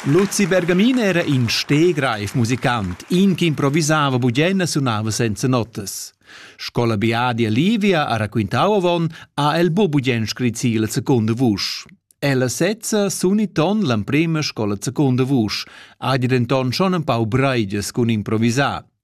Luzi Bergamin era in stegreif musicant, in che improvisava bugienna sunava senza notas. Scola biadia Livia ha raquintau avon, ha el bu bugen scrit si la secunda vusch. Ella sezza suni ton l'emprema scola secunda vusch, ha di denton schon empau breiges cun improvisar.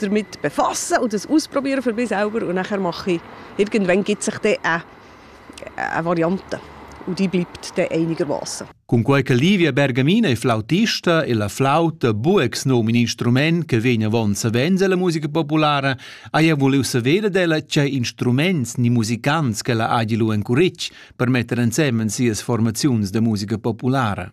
damit befassen und das ausprobieren für mich selber und nachher mache ich, irgendwann gibt sich dann eine, eine Variante und die bleibt dann einigermaßen. Cunquei che Livia Bergamina è flautista e la flauta bu ex num in instrument che vegn avon savens alla musica populara, haja vuliu saver d'ella che instruments ni musicants che la hagi lu encuric per metter ensemen sias formaziuns de musica populara.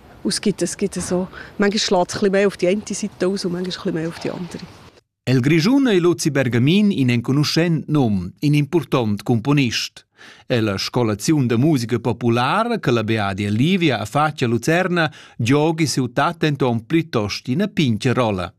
Und gibt es, gibt es so manchmal schlägt es ein mehr auf die eine Seite aus und manchmal ein mehr auf die andere. El Grischun ei Luzi Bergamin in enconuschent nom, in important componist. È la scolazione de musica popolare che la Beadia Livia ha fatto a Lucerna giochi ciutat enton plitost ina pinche rolla.